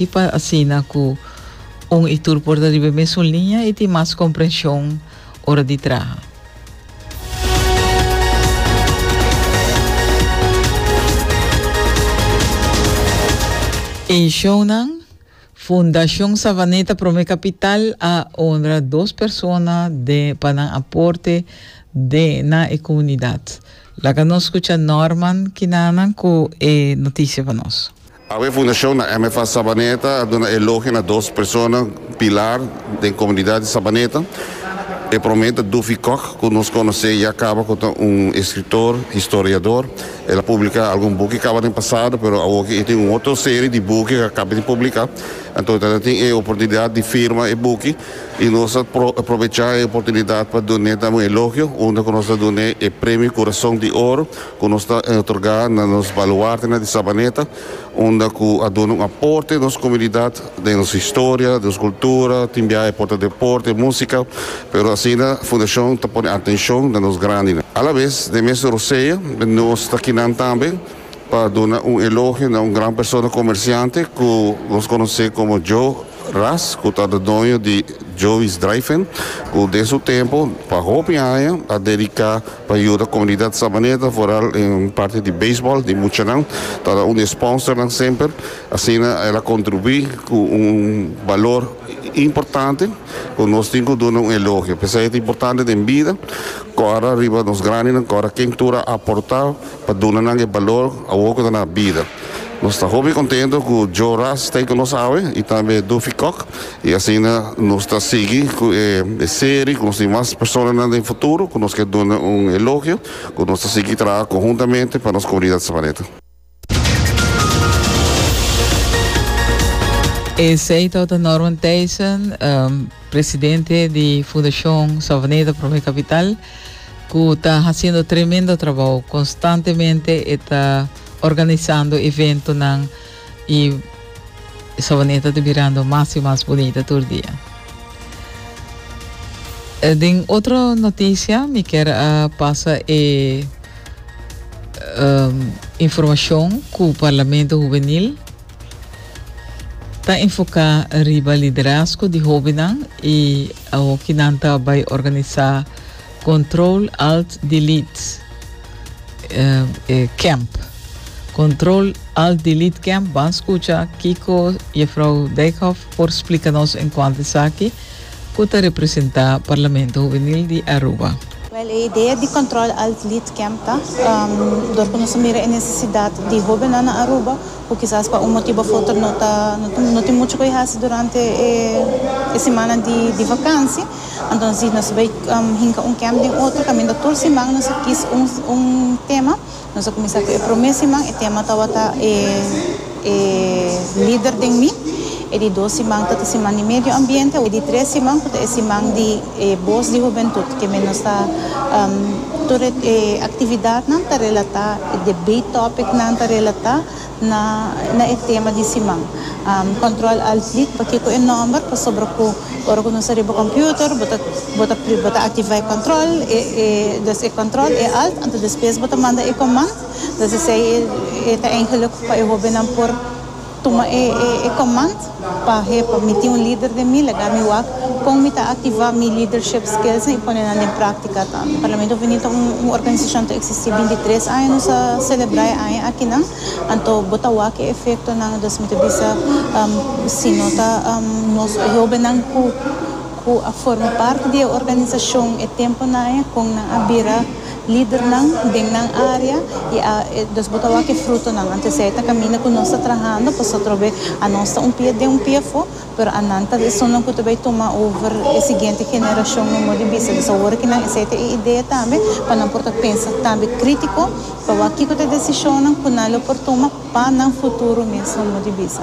I pa asina ku un i tur por ta riba e mesun liña i tin mas komprenshon ora di traha. Eishounan, Fundashon Savaneta Promé Kapital a onra dos persona den pa nan aporte den na e komunidat. Laga nos skucha Norman Kinanan ku e notisia pa nos. Awe Fundashon na MFA Sabaneta a duna elogio na dos persona pilar den komunidat di Sabaneta. E prome ta Duffy Kok ku nos konos'é ya kaba ku ta un eskritor, historiador. El a publiká algun buki kaba den pasado pero awoki e tin un otro serie di buki ku a kaba di publiká. Anto e ta na tin e oportunidat di firma e buki i nos ta aprovechá e oportunidat pa dun'é tabata un elogio unda ku nos ta dun'é e Premio Kurason di Oro. Cu nos ta otorga na nos baluarte na di Sabaneta, unda cu a duna un aporte nos comunidad den nos historia, nos cultura, tin biaha por ta deporte, musica, pero asina Fundacion ta pone atencion na nos grandi. A la vez, den mes Rosea, nos ta kinan tambe pa duna un elogio na un gran persona comerciante cu nos conoce como Joe Ras, cu ta ta doño di Joey's Drive-In, cu den su tempo, pa hopi aña, a dedica. Pa yuda komunidat Sabaneta foral den parti di beisbòl di muchanan ta un di e spònsernan semper. Asina el a kontribuí ku un balor importante ku nos tin ku duna un elogio. P'esei et importante den bida kòrda riba nos grandenan, kòrda ken tur a aportá pa duna nan e balor awor ku ta na bida. Nos ta hopi kontento ku Joe Ras ta ei ku nos awe i tambe Duffy Kok I asina nos ta sigui cu e serie cu nos tin mas personanan den futuro cu nos ke duna un elogio cu nos ta sigui traha conhuntamente pa nos comunidad Sabaneta. Esey tawata Norman Thijssen, presidente di Fundacion Savaneta Promo e Capital, cu ta haciendo tremendo trabao. Constantemente e ta organisando eventonan. y e sabaneta ta birando mas y mas bunita tur dia. Den otro noticia mi kier a pasa e informacion cu Parlamento Juvenil ta enfoca riba liderazgo di hobennan y awo ki nan ta bay organisa Control Alt Delete. e camp. Control Alt Delete Camp van escucha Kiko Jefrouw Dijkhoff por explica nos en cuanto esaki cu ta representa Parlamento Juvenil di Aruba. Wel, e idea di Control Alt Delete Camp ta um dor cu nos a mira e necesidad di hobennan na Aruba cu kisas pa un motibo of otro no ta no tin mucho cu e haci durante e e semana di di vakansi. Anto si nos bai hinca un camp den otro caminda tur siman nos a kis un tema, nos a cuminsa cu e prome siman e tema tabata e e lider den mi, e di dos siman ta ta siman di medio ambiente, e di tres siman cu ta e siman di e boz di hubentud ke men nos ta tur e actividadnan ta relata, e debate topicnan ta relata Na e tema di siman. Control Alt Delete pakico e nomber pasobra cu ora cu nos ta riba computer bo ta bo ta bo ta activa e control e e dus e control e alt anto despues bo ta manda e command dus esey e ta eingelijk pa e hobennan por tuma e e command. Pa he pa mi tin un lider den mi, lagá mi wak kon mi ta aktivá mi lidership skillsnan i pone nan den práktika tambe. Parlamento Húnio ta un un organisashon ta eksistí binti tres aña, nos a selebrá e aña aki nan, anto bo ta wak e efektonan, entonces mi ta bisa si no ta nos hóbennan ku ku a forma parti di e organisashon e tempu nan aña kon nan a bira. lidernan den nan área i ados bo ta wak e frutonan. Anto esei ta kaminda ku nos ta trahando pasobra ta atrobe anos ta un pia den un pia afó, pero anan ta esonnan ku ta bai tuma over e siguiente generashon no modo di bisa. Entonces awor kinan esei ta e idea tambe pa nan por ta pensa tambe krítiko pa wak kiko ta e desishonnan ku nan lo por tuma pa nan futuro mes no modo di bisa.